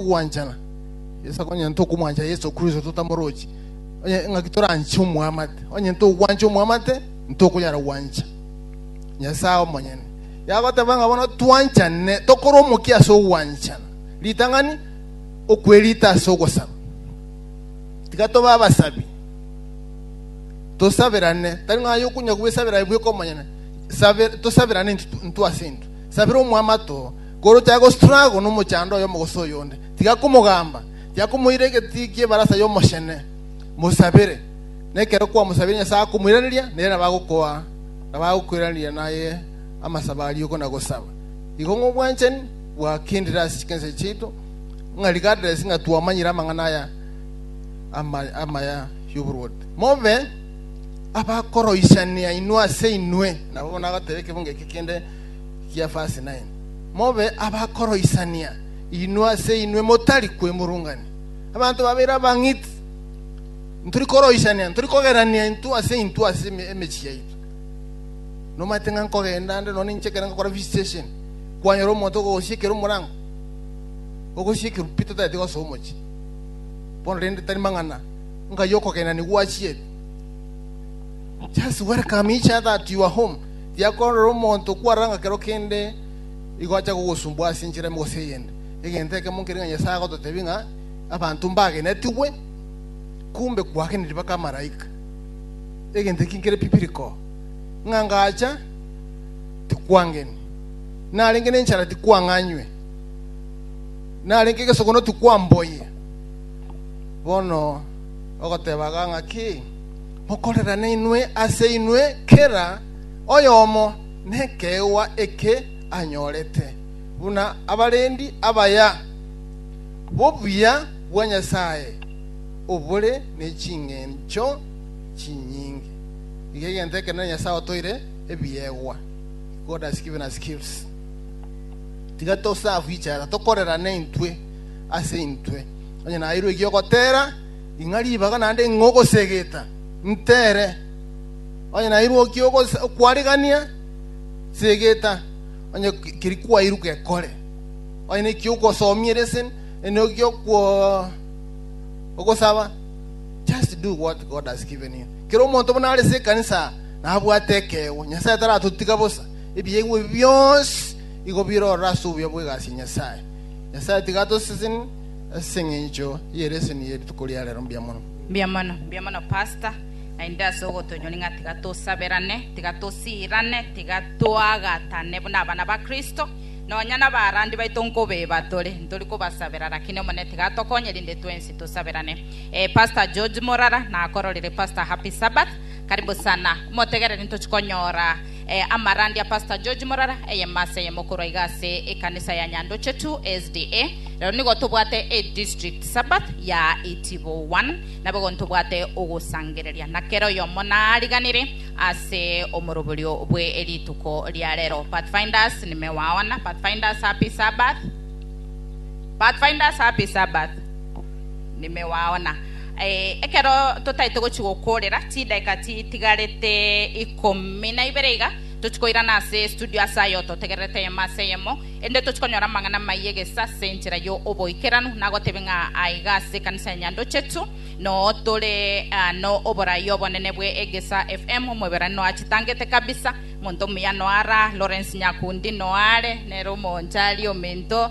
Ogwanchana Yeso akonywa onye tokomwancha Yeso Kristo totamorochi onye ng'aki toranche omwamate onye togwancha omwamate ntokonyara gwancha Nyasaye omonyene yagoteba ng'a bono twanchane tokore omokia ase ogwanchana ritang'ani okwerita ase ogosaba tiga toba abasabi tosaberane tari ng'aye okunya gwesabera bweka omonyene tosabirane intu ase intu sabira omwamato Korwa tiagostruggle nomochando oyomo gose oyonde, tiga komogamba, tiga komoira egetii ki'ebarasa y'omochene. Mosabere, na ekero kwamosabirie Nyasae akomoiraneria, nere nabo agokoa, nabo agokoiraneria naye amasabo a riuko na gosaba. Igo ng'obwanchani bwakendire ase chikencho chiaito, ng'a regardless ng'a twamanyire amang'ana aya ama amaya y'oboruoti, mobe abakoroisania inwe ase inwe. Nabo bono agoteba ekebungo eke kende, gia verse 9, Mobe abakoroisania inwe ase inwe motari kwemurungania. Abanto babere abang'iti ntori koroisania, ntori kogerania intwe ase intwe ase eme- emechie yaito. Nomanyete ng'a nkogenda ande nonya ninche ekero ngakora visitation, kwanyora omonto okogosiekera omorango, ogosiekerwa pi totaete gosoa omochie. Bono rende tari mang'ana, ng'ai okogenani gwachiete. Just welcome each other at your home. Tiakorora omonto kwarora ng'a kero kende nigo acha kogosumbwa ase enchera ime gose eyende. Egento ekemo nkere ng'a Nyasae agototebia ng'a abanto mbagenetigwe, kumbe kwageneti mpaka amalaika. Egento eki nkere biblical, ng'a ngacha tikwangeni, narenge nenchara tikwang'anywe, narenge egesogono tikwamboyia. Bono ogoteba iga ng'a ki? Mokorerane inwe ase inwe, kera oyomo nekeegwa eke anyorete, buna abarendi abaya b'obuya bwa Nyasae obore ne chingencho chinyinge. Iga egento ekenene Nyasae otoire ebiegwa, God has given us gifts. Tiga toserve each other, tokorerane intwe ase intwe, onye naeirwe eki'ogotera, Ing'a ribaga naende ing'o ogosegeta? Ntere, onye nairwe okie okwarigania, segeta, onye keria kwairwe gekore. Onye nekiya ogosomia eresen, onye nokia ogosaba, just do what God has given you. Kera omonto buna arese ekanisa nabwate ekeegwa. Nyasae taratotiga bosa. Ebiegwa ebi bionsi igo birorire ase obuya bw'egasi ya Nyasae. Nyasae tiga atoseseni, As'engencho ye leseni ye rituko ria rero mbia mono. Mbia mono, mbia mono pastor, naende ase ogotonyori ng'a tiga tosaberane, tiga tosiirane, tiga toagatane buna abana ba Kristo, nonya nabarandi baito nkobeba tore, ntori kobasabera lakini Omonene tiga atokonye rinde twensi tosaberane. Eh, Pastor George Morara nakororire Pastor Happy Sabbath, karibu sana, motegereri ntochi konyora Amarande a Pastor George Morara, eyemasi eyemo korwa iga ase ekanisa ya Nyandoche tu SDA. Rero nigo tobwate e district Sabbath ya Itibo one, nabo igo ntobwate ogosangereria, na kera oyomo nariganire ase omoroberio bwe rituko ria rero. Pathfinders nimewaona. Pathfinders happy Sabbath. Pathfinders happy Sabbath. nime waona. Eh, ekero totaete gochi gokorera chidakika chitigarete ikomi na ibere iga, tochi koirana ase estudio ase ayio totegererete eyemo ase eyemo, erinde tochi konyora amang'ana amaiyo egesa ase enchera yo oboikeranu. Nagotebie ng'a aiga ase ekanisa ya Nyandochetu noo tore ah, no oborai obonene bwe egesa FM, omoiberani noa chitangete kabisa, monto omuya noa ra, Lawrence Nyakundi noa are, nere omoonchari, omento,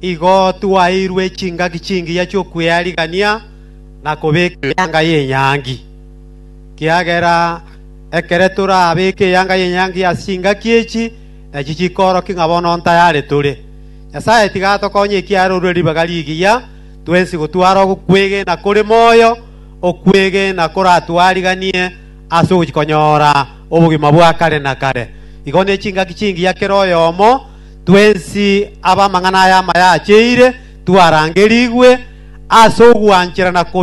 igo twaeirwe chingaki chingiya chi'okwearigania na kobeka eyanga y'enyangi. Ekiagera ekere torabeke eyanga y'enyangi ase chingaki echi, nachi chikoorokia ng'a bono ntayare tore. Nyasae tiga atokonye ekiagera orure ribaga rigiya twensi gotwara okwegena kore moyo, okwegena koratwariganie ase ogochia konyora obogima bwa kare na kare. Igo ne chingaki chingiya kera oyomo, Twensi ab'amang'ana aya amaya acheire twarangerigwe ase ogwancherana kobe.